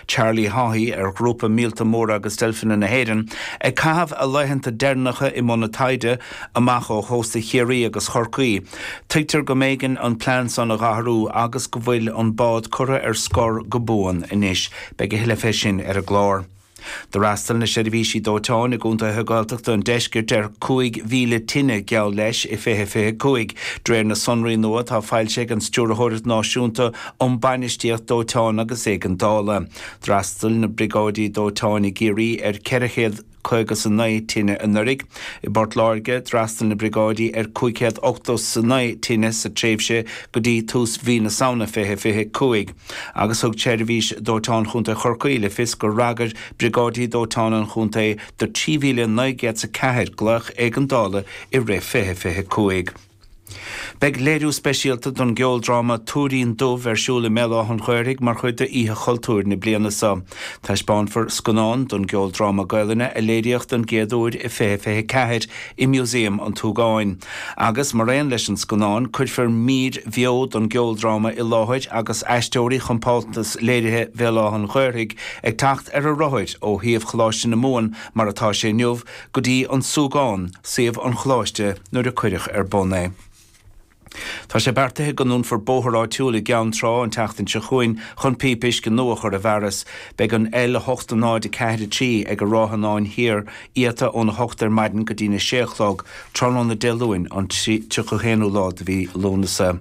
Charlie Haughey, ar ghrúpa Míolta Móra agus Deilfeanna na hÉireann, ag caitheamh a laethanta deireanacha i mbun taighde, amach ó chósta Chiarraí agus Chorcaí. Tuigtear go mb'éigean an plean san a dh'athrú agus go bhfuil an bád curtha ar scor go buan anois. Beidh a thuilleadh fé sin ar an gclár. D'fhreastail na seirbhísí dóiteáin i gcontaetha Gaeltachta an deiscirt ar 5,000 tine, geall leis, i 2025. De réir na sonraí nua atá foilsithe ag an Stiúrthóireacht Náisiúnta um Bainistíocht Dóiteáin agus Éigeandála, d'fhreastail na briogáidí dóiteáin i gCiarraí ar 459 tine anuraidh. I bPort Láirge, d'fhreastail na briogáidí ar 589 tine sa tréimhse go dtí tús mhí na Samhna 2025. agus thug Seirbhís Dóiteáin Chontae Chorcaí le fios gur fhreagair briogáidí dóiteáin an chontae do 3,904 glaoch éigeandála i rith 2025. Beidh léiriú speisialta don gceoldráma 'Túirín Dubh' ar siúl i mBéal Átha'n Ghaorthaidh mar chuid de Oíche Chultúir na bliana seo. Taispeánfar scannán don gceoldráma Gaolainne a léiríodh don gcéad uair i 2024, i Músaem an tSúgáin. Agus, mar aon leis an scannán, cuirfear mír bheo don gceoldráma i láthair agus aisteoirí Chompántas Léirithe Bhéal Átha'n Ghaorthaidh ag teacht ar a rothair ó shuíomh Choláiste na Mumhan mar atá sé inniu go dtí An Súgán, suíomh an choláiste nuair a cuireadh ar bun é. Tá sé beartaithe go ndúnfar bóthar áitiúil i gCeann Trá an tseachtain seo chugainn chun píopa uisce nua a chur i bhfearas. Beidh an L8 0 4 3 ag an Ráthanáin Thiar iata ón 8 ar maidin go dtína 6 a chlog tráthnóna Dé Luain an 31ú lá de mhí Lúnasa.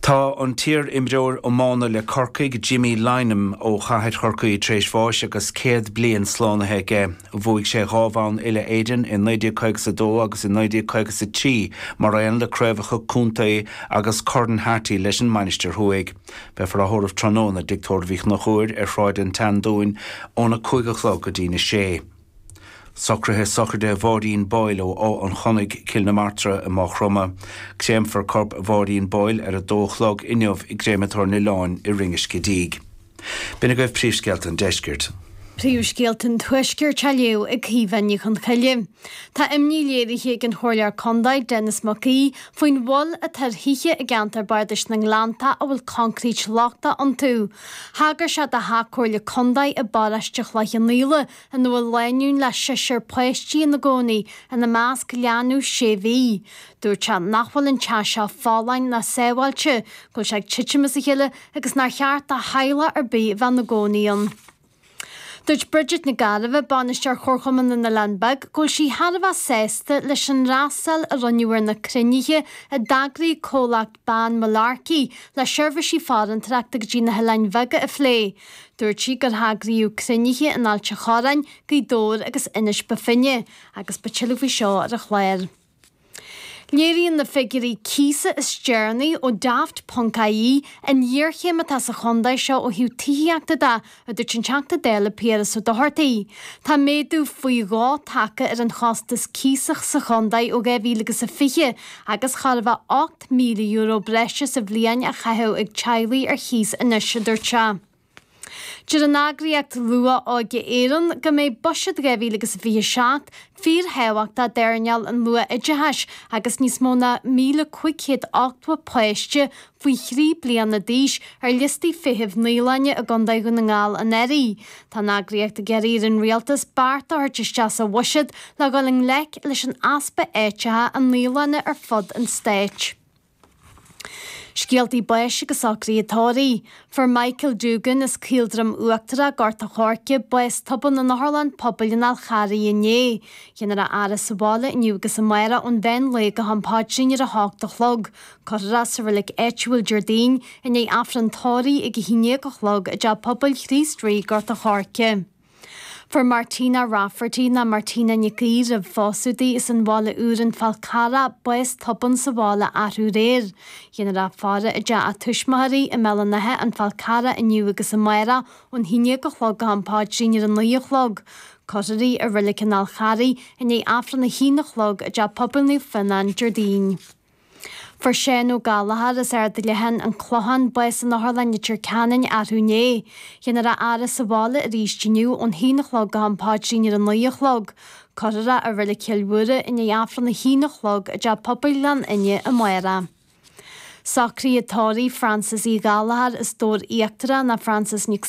Tá an t-iar-imreoir iomána le Corcaigh, Jimmy Lynam ó chathair Chorcaí tar éis bháis agus 100 bliain slánaithe aige. Bhuaigh sé dhá bhonn uile Éireann i 1950 sa 2 agus i 1950 sa 3 mar aon le craobhacha contae agus Corn Harty leis an Mainistir Thuaidh. Beifear á thórramh tráthnóna i dTigh Tórraimh Uí Chonchúir ar Shráid an tSeandúin ón 5 a chlog go dtí'n 6. Socruithe Sochraide Mháirín Boyle ó Áth an Chonnaidh, Cill na Martra i Máigh Chromtha. Créamfar corp Mháirín Boyle ar 2 a chlog inniu i gCréamatóir an Oileáin i Rinn an Scidígh. B'in agaibh príomhscéalta an Deiscirt. Príomhscéalta an Tuaiscirt á léamh ag Caoimhe Ní Chonchoille. Tá imní léirithe ag an Chomhairleoir Contae, Denis Mac Aoidh, faoin mhoill atá ar thithe i gceantar Bardais na nGleannta a bhfuil concrete lochtach iontu. Thagair sé do Theach Comhairle Contae i bParóiste Chloich Cheann Fhaola, ina bhfuil lánúin le seisear páistí ina gcónaí, ina measc leanbh sé mhí. Dúirt sé nach bhfuil an teach seo folláin ná sábháilte, go bhfuil sé ag titim as a chéile agus nár cheart do theaghlach ar bith a bheith ina gcónaí ann. Dúirt Bridget Nic Gairbheith, bainisteoir Chomharchumann na nOileán Beag, go bhfuil sí thar a bheith sásta leis an fhreastal a rinneadh ar na cruinnithe a d'eagraigh Comhlacht bean Mullarkey, le seirbhísí farantóireachta go dtí na hOileáin Bheaga a phlé. Dúirt sí gur heagraíodh cruinnithe in Ailt a' Chorráin, Gaoth Dobhair agus Inis Bó Finne agus beidh tuilleadh faoi seo ar an chlár. Léiríonn na figiúirí cíosa is deireanaí ó Daft. ie an ghéarchéim atá sa chontae seo ó thaobh tithíochta de a dúirt an Teachta Dála Piaras Ó Dochartaigh. Tá méadú faoi dhó tagtha ar an chostas cíosa sa chontae ó 2000 agus a fiche agus chóir a bheith €8,000 breise sa bhliain á chaitheamh ag teaghlaigh ar chíos anois, a dúirt sé. Deir an eagraíocht Luath-Óige Éireann go mbeidh Buiséad 2000 agus a fiche seacht fíorthábhachtach d'earnáil an luath-oideachais agus níos mó ná 1,500 ochtó páiste faoi thrí bliana d'aois, ar liostaí feithimh naíolainne i gContae Dhún na nGall anuraidh. Tá an eagraíocht ag iarraidh ar an Rialtas beart a thabhairt isteach sa bhuiséad le dhul i ngleic leis an easpa áiteacha i naíolanna ar fud an Stáit. Scéaltaí báis agus socruithe tórraimh. Fuair Michael Doogan as Caoldroim Uachtarach, Gort a' Choirce, bás tobann in Otharlann Pobail an Fháil Charraigh inné. Dhéanfar a fhaire sa bhaile inniu agus amárach ón mheán lae go ham páidrín ar a hocht a chlog. Cuirfear é sa reilig áitiúil Déardaoin i ndiaidh Aifreann tórraimh ag a haon dhéag a chlog i dTeach Pobail Chríost Rí, Gort a' Choirce. Fuair Martina Rafferty, nó Martina Nic Aoidh roimh phósadh di, as an Bhaile Úr an Fál Carrach bás tobann sa bhaile arú aréir dhéanfar a faire i dteach a tuismitheoirí i mBéal an Átha, an Fál Carrach inniu agus amárach ón haon dhéag a chlog go ham páidrín ar a naoi a chlog. Cuirfear í i Reilig an Fháil Charraigh i ndiaidh Aifreann a haon a chlog i dTeach Pobail Naomh Fionán Déardaoin. Fuair Shane Ó Gallchóir as Ard Leathan, an Clochán, bás in Otharlann Leitir Ceanainn arú inné. Dhéanfar a fhaire sa bhaile arís inniu ón haon a chlog go hAm Páidrín ar a naoi a chlog, cuirfear é i Reilig Chill Mhuire i ndiaidh Aifreann a haon a chlog i dTeach Pobail Ghleann Fhinne amárach. Socruithe tórraimh Frances Uí Ghallchóir as Dobhar Íochtarach nó Frances Nic